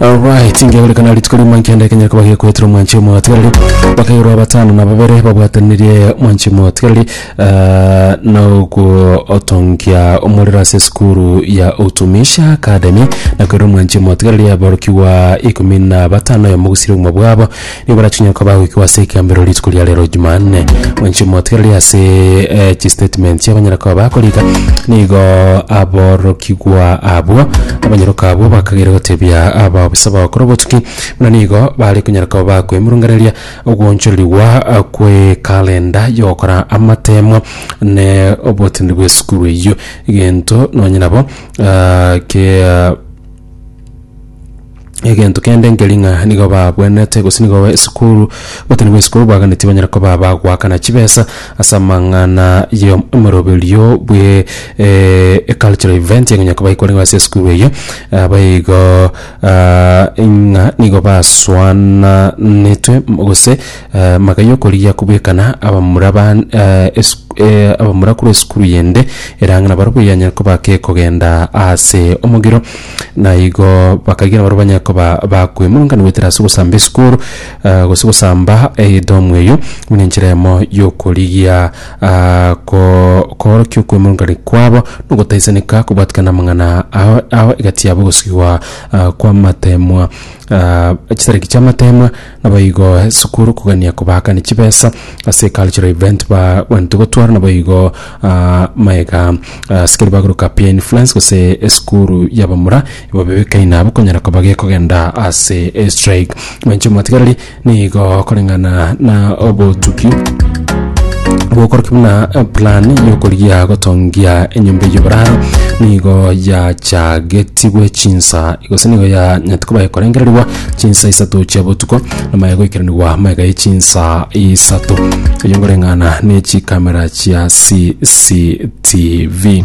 Alright, ngeorekana rituko rimo nkende ekenyera kuba gekwetera omwanchi omotigareri bakairwa abatano na babere babwatanirie omwanchi omotigareri ah, na ogotongia omorero ase esukuru ya utumishi academy na koirwa omwanchi omotigareri aborokigwa ikomi na batano oyo mogusire obogima bwabo Nigo barachinyare koba agoikigwa ase ekeambero rituko ria rero Jumanne. Mwanche motigereri ase eh, chistatement chia abanyare koba bakorika. Nigo aborokigwa abwo abanyaroka abwo bakageire gotebia abaofisa bagokora obotuki buna nigo bare konyara koba bakoemurunganeria ogoonchorerigwa ah, kwe kalenda yogokora amatemo ne obotiniri bw'esukuru eyio egento nonye nabo ah, ke ah, egento kende nkeri ng'a nigo babwenerete gose nigo esukuru gotini bwa esukuru bwaganeti banyare koba bagoakana chibesa ase amang'ana ya omoroberio bwe eh, ecultural event egonya koba ekorengwa ase esukuru eyio aba igo ah, ng'a nigo basoananetwe gose Amaka y'okorigia kobwekana abamura ba abamura korwa esukuru yende erang'ana barobwo yanyare koba kekogenda ase omogiro na igo bakagira barobwo banyare koba bakwemurungana goetera ase ogosamba esukuru gose gosamba edomu eyio buna enchera eyemo y'okorigia ko koorokia okwemurungania kwabo na ogotaisaneka kobwatikana amang'ana ao ao egati yabo egosigwa kw'amateemwa chitariki chi'amateemwa. Naboigo esukuru kogania kobakani chibesa ase cultural event bagwanete gotwara naboigo ah, maega ah, sikeri bagoruka peer influence gose esukuru yabamura ibo bebekei nabo konyara koba gekogenda ase strike mwenche omwatigareri nigo koreng'ana na obotuki gokoroki buna eh, plan yokorigia gotongia enyomba y'oboraro nigo yachagetigwe chinsa gose nigo yanyati koba ekorengererwa chinsa isato chia botuko namaya goikeranigwa mega ye chinsa isato eyo ngoreng'ana ne chikamera chia CCTV